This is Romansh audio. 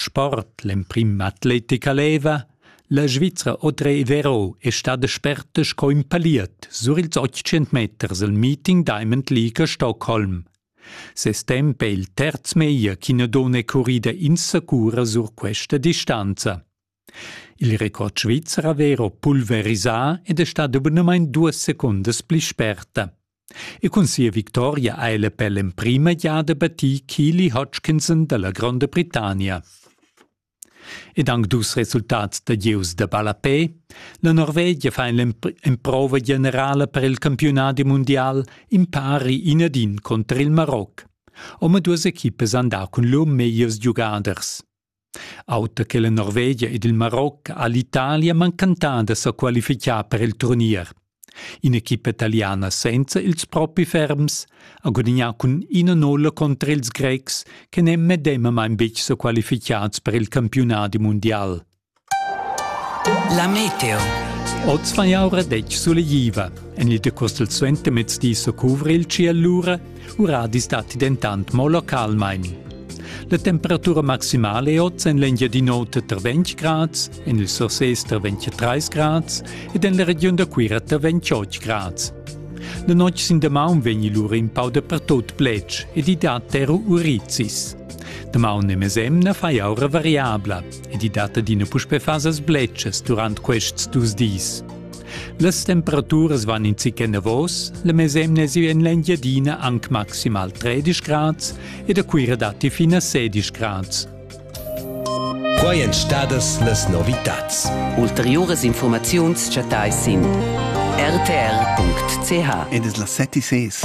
Sport l'emprim atletica leva, la Svizra Audrey Vero è stada sperta sco in paliet sur ils 800 meters al meeting Diamond League a Stockholm. Ses temp è il terz meglio ch'ina donna è currida insacura sur questa distanza. Il record svizzer ha vero pulverisà ed è stato bunamain duas secundas pli sperta. E cun sia victoria ha ella per l'emprima giada battì Keely Hodgkinson dalla Gronda Britannia. Ed anc dus resultats da gieus da ballapè. La Norvegia fa l'emprova generala per il campiunadi mundial impari in ad in contr il Maroc. Omaduas equipas han dà cun lur megliers giugaders. Auter che la Norvegia ed il Maroc ha l'Italia manchentà da sa qualificar per il turnier. In'equipa italiana senza ils propi ferms ha gudagnà cun ina nulla contra ils Grecs che n'èn medemamain betg sa qualificads per il campiunadi mundial. La meteo. Oz fan jau retg sulegliva. En il decostel suentermezdi so cuvra il tschiel lura, uradis datti dentant mo localmain. La temperatura maximale è oz en l'Engiadin'Ota tra 20 grads, en il Surses tra 23 grads ed en la regiun da Cuira tra 28 grads. La notg sin damaun vegni lura in pau dapertut plets ed i dat era urizis. Damaun e mesemna fa jau variabla, ed i dat adina puspè fasas bletschas durant quests dus dis. Las temperaturas van in zic enavos, la mesemna è en l'Engiadina anc maximal 13 grads ed a Cuira datti fin a 16 grads. Quai èn stadas las novitads. Ulteriuras informaziuns chattais sin rtr.ch. Ed es las set e ses.